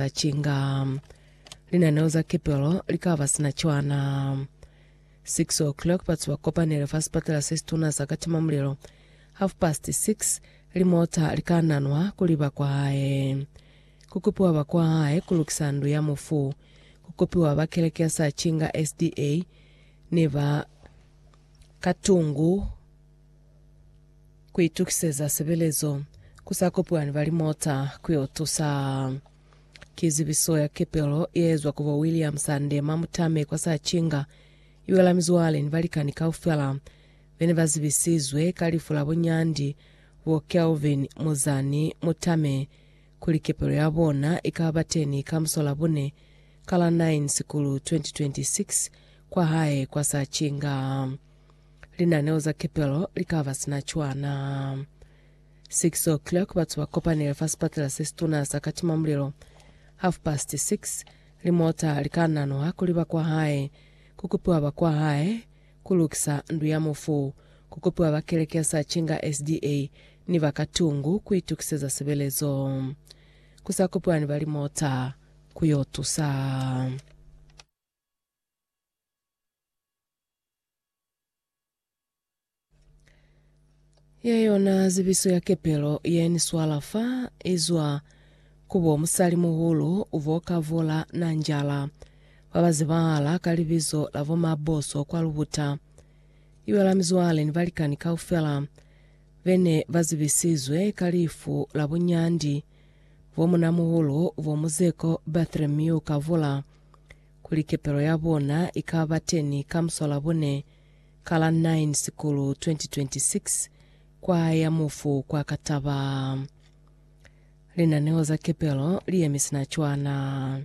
za chinga linaneo za kepelo likaba sina cwana 6 o'clock batsi ba kopanele fa sipatala se situna sa katima mulelo half past 6 limota likananwa kuli bakwahae kukupiwa bakwahae kulukisa ndu ya mufu kukupiwa ba keleke ya sa chinga sda ne ba katungu Ku itukiseza sebelezo ku sa kopani ba limota ku yo tusa. Ki zibiso ya kepelo ye ezwa ku bo William Sande mwa Mutame kwa Sachinga, i wela mizwale ni balikani kaufela be ne ba zibisizwe ka lifu la bo Nyandi, bo Kelvin Muzani Mutame, kuli kepelo ya bona i ka ba teni ka Musolabune ka la 9 Sikulu 2026 kwa hae kwa Sachinga. Linaneo za kepelo li ka ba sina cwana. 6:00 batu ba kopanile fa sipatela se situna sa katimamulilo. Half past 6 limota li ka nanuha ku liba kwa hae, ku kupiwa ba kwa hae, ku lukisa ndu ya mufu, ku kupiwa ba keleke ya sa cinga SDA ni ba ka tungu ku itukiseza sebelezo. Ku sa kupiwa ni ba limota ku yo tusa. Ye yona zibiso ya kepelo ye ni swala fa izwa kubo musali muhulu ubo kavola na njala ba ba zibahala ka libizo la bo Maboso kwa Lubuta. Iwela mizwale ni balikani kaufela bene ba zibisizwe ka lifu la bunyandi bo munamuhulu ubo Muzeko Bartholomew Kavola kuli kepelo ya bona i ka ba teni ka Musolabune ka la 9 Sikulu 2026 kwa ya mufu kwa Kataba. Linaneo za kepelo li yemi sina cwana.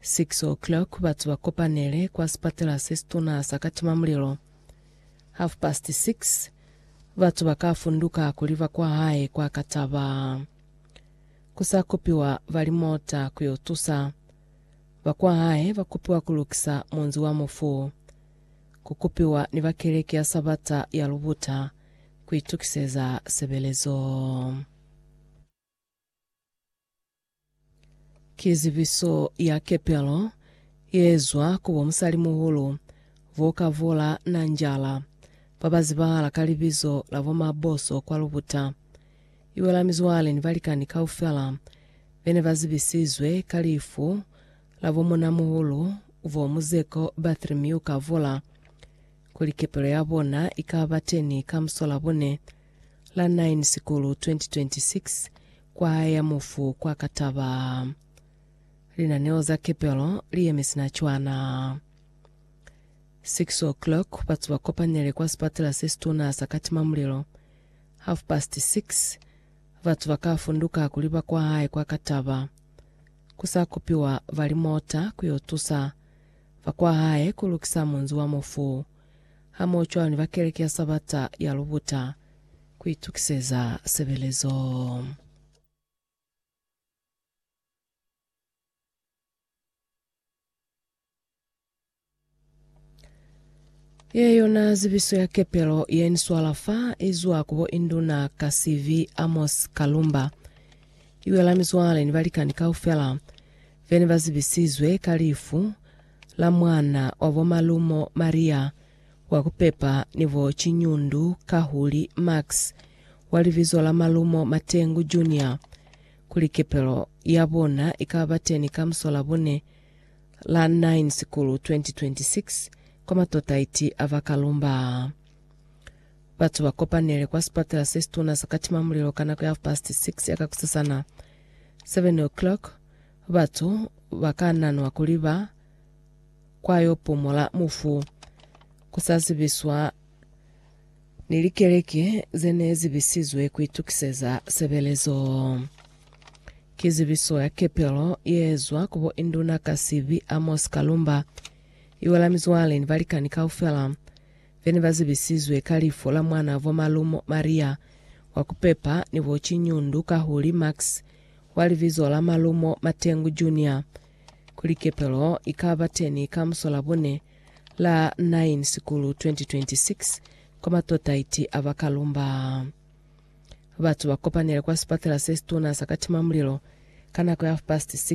6:00 batu ba kopanele kwa sipatela se situna sa Katimamulilo. Half past 6 batu ba ka funduka kuli ba kwa hae kwa Kataba. Ku sa kopiwa ba limota ku yo tusa. Bakwahae ba kupiwa ku lukisa munzi wa mufu, ku kupiwa ni ba Keleke ya Sabata ya Lubuta ku itukiseza sebelezo. Ki zibiso ya kepelo ye zwa ku bo musalimuhulu vo ka vola Nanjala, ba ba zibahala ka libizo la bo Maboso kwa Lubuta. Iwe la mizwale ni balikani kaufela be ne ba zibisizwe ka lifu la bo muuna-muhulu, bo muzeko Bartholomew Kavola, kuli kepelo ya bona i ka ba teni ka muso la bone la 9 Sikulu 2026 kwa hae ya mufu kwa Kataba. Linaneo za kepelo li yemi sina cwana. 6:00 batu ba kopanele kwa sipatela se situna sa Katima Mulilo Half past six, Batu ba ka funduka kuli ba kwa hae kwa ka taba. Ku sa kupiwa ba limota ku yo tusa ba kwa hae ku lukisa munzi wa mufu, hamohocwalo ni ba keleke ya Sabata ya Lubuta, ku itukiseza sebelezo. Ye yona zibiso ya kepelo ye ni swala fa izwa kubo induna ka CV Amos Kalumba. Iwela mizwale ni balikani kaufela vene bazibisizwe ka lifu la mwana wa bo Malumo Maria wa kupepa ni bo Chinyundu Kahuli Max wa libizo la Malumo Matengu Junior kuli kepelo ya bona ikaba teni ka musola bune la 9 Sikulu 2026 kwa Matotaiti a ba Kalumba. Batu ba kopanele kwa sipatela se situna sa Katima Mulilo ka nako ya half past 6 ya kakusasana, 7 o'clock. Batu ba ka nanwa kuli ba kwa yo pumola mufu ku sa zibiswa ni likeleke ze ne zi bisizwe ku itukiseza sebelezo. Ki zibiso ya kepelo ye zwa ku bo Induna ka Sibi Amos Kalumba, iwa la mizwale ni balikani kaufela be ne ba zibisizwe ka lifu la mwana vwa malumo Maria wa ku pepa ni bo Chinyundu Kahuli Max wa libizo la malumo Matengu Junior, kuli kepelo i ka ba teni ka muso la bune La 9 Sikulu 2026 kwa matotaiti a ba Kalumba, batu ba kopanile kwa sipatela se situna sa Katimamulilo ka nako ya half past 6